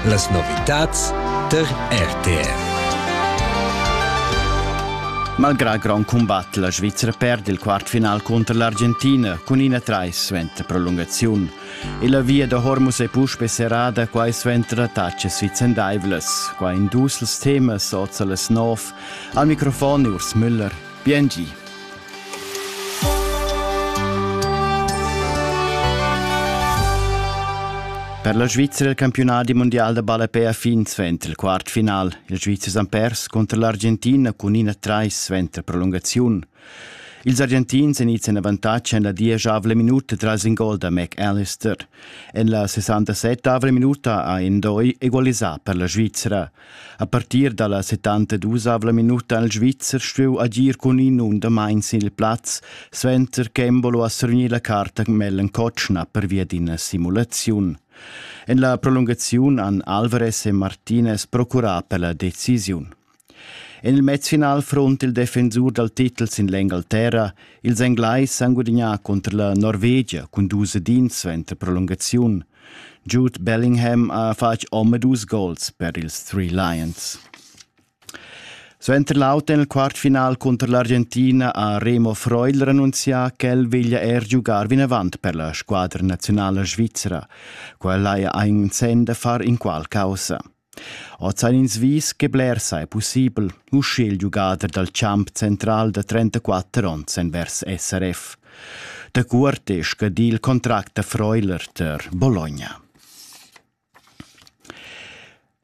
Las novitads tar RTR. Malgrà grond cumbat, la Svizra perd il quartfinal cunter l'Argentina cun ina trais suenter prolungaziun e la via da Hormuz è puspè serrada quai suenter attacas vicendaivlas. Qua in dus temas oz las nov. Al microfon Urs Müller. Biengi. Per la Svizra il campiunat mundial da ballapè ha fin suenter il quartfinal. Il Svizzer han pers cunter l'Argentina cun ina trais suenter prolungaziun. Ils Argentins èn ids en avantatg en la dieschavla minuta tras in gol da McAllister. En la 67 minuta ha Endoi egalisà per la Svizra. A partir dalla 72 minuta ha il Svizzer stuiu agir cun in undamain sil plaz, suenter che Embolo ha survgni la carta Mellen Kotschna pervia d'ina simulaziun. En la prolungaziun han Alvarez e Martinez procurà per la decisiun. En il mezfinal front il defensur dal titel sin l'Engalterra, ils Englais han gudagnà contro la Norvegia cun dus edins suenter prolungaziun. Jude Bellingham ha fatg omadus gols per ils Three Lions. Suenter l'auter nel quartfinal cunter l'Argentina ha Remo Freuler annunzià ch'el veglia er giugar vinavant per la squadra nazionala svizra. Quella haja ein senn da far inqual causa. Oz han ins vis che blers ei pussibel, uschiglio giugader dal champ central da 34 onns en vers SRF. Da cuort è scadì il contract da Freuler tar Bologna.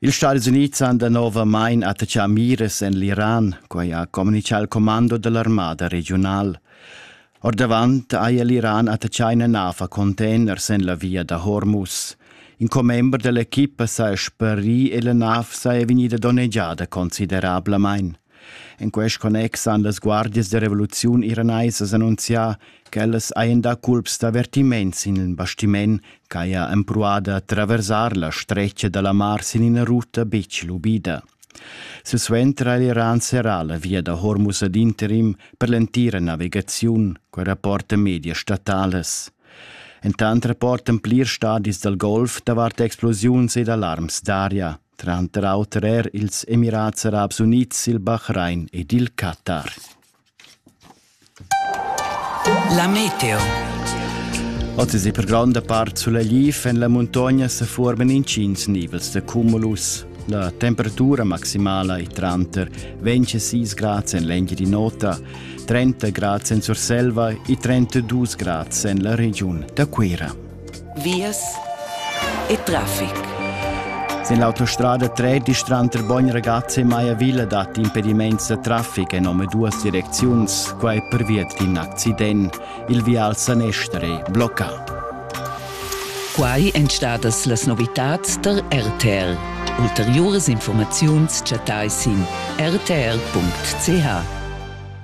Ils Stati Unids han danovamain attaccà mires en l'Iran, quai ha communichà il commando dell'armada regional. Ordavant haja l'Iran attachà ina nav a container sin la via da Hormuz. In commember da l'equipa s'ha sparì e la nav saja vegnida donnegiada considerablamain. In quest connex han las guardias da revoluziun iraneisas annunzià ch'ellas hajan dà culps d'avvertiment sin il bastiment ch'haja empruada a traversar la stretga da la mar sin ina ruta betg lubida. Silsuenter ha l'Iran serrà la via da Hormuz ad interim per l'entira navigaziun quai rapportan medias statalas. Entant rapportan plirs stadis dal Golf davart explosiuns ed alarms d'aria, tranter auter er ils Emirats Arabs Unids, il Bahrain ed il Qatar. La meteo. Oz è per gronda part sulegliv en la muntogna se formen intgins nivels de cumulus. La temperatura maximala è tranter 26 grad en l'engi di nota, 30 grad en Surselva e 32 grad en la region da Cuira. vias e traffic. Sin l'autostrada 13 tranter Bogn Ragazzi e Maiavilla dat impedimaints da traffic en duas direcziuns, quai pervia d'in accident. Il vial sanestra è bloccà. Quai èn stadas las novitads tar RTR. Ulteriuras informaziuns chattai sin rtr.ch.